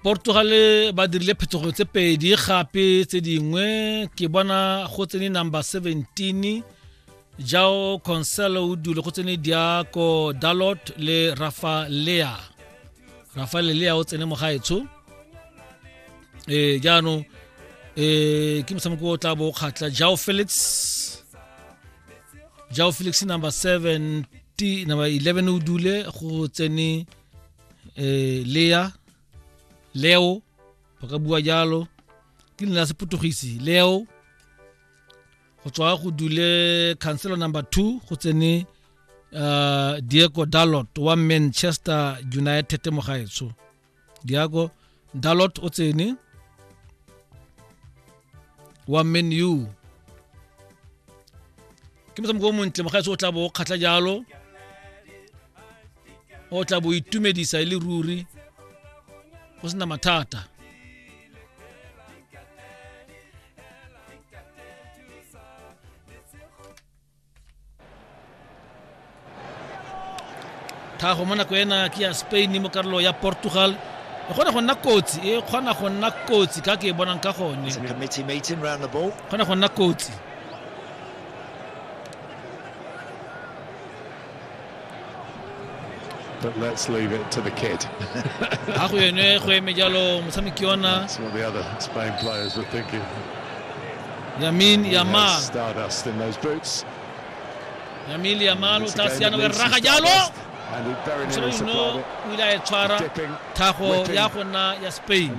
Portugal ba dirile phetogo tse pedi gape tse dingwe ke bona go tsene number 17 jao conselo o dule go tsene diako dalot le rafa lea rafa lea o tsene mo gaetsho e eh, jaanong e eh, ke motshameko o tla bo kgatla jao felix jao felix number 7 t number 11 o dule go tsene eh, lea leo ba ka bua jalo ke lena sepotogisi leo go tswa go dule councilor number 2 go tsene uh, diego dalot wa manchester united mogaetsho diago dalot o tsene wa man u ke motshameko o montle mogaetse o tla bo o kgatlha jalo o tla bo itumedisa e le ruri go sena mathata tlhago mo nako ena ke ya spain mo karolo ya portugal e kgona go nna kotsi e kgona go nna kotsi ka ke e bonang ka gone kgona go nna kotsi But let's leave it to the kid. That's what the other Spain players were thinking. Yamin Yamal. Stardust in those boots. Yamin Yamal o tla siana o raga jalo. Moshebedi no o ile a e tshwara thago ya go nna ya Spain.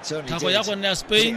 Thago ya go nna ya Spain.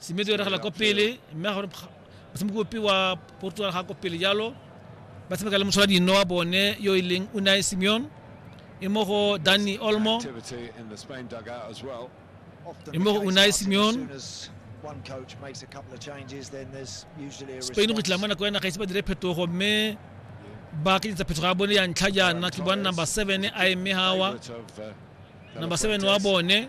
semedi eregela ko pele mme a gore motshameki ope wa portugal ga ko pele jalo ba tshameka le motshola dino wa bone yo e leng unai simeon e mo go danny olmo e mo go unai simeon spain go tla mo nako ya naga ise ba dire phetogo mme ba kenyetsa phetogo ya bone ya ntlha jaana ke bona number seven a eme gawa number seven wa bone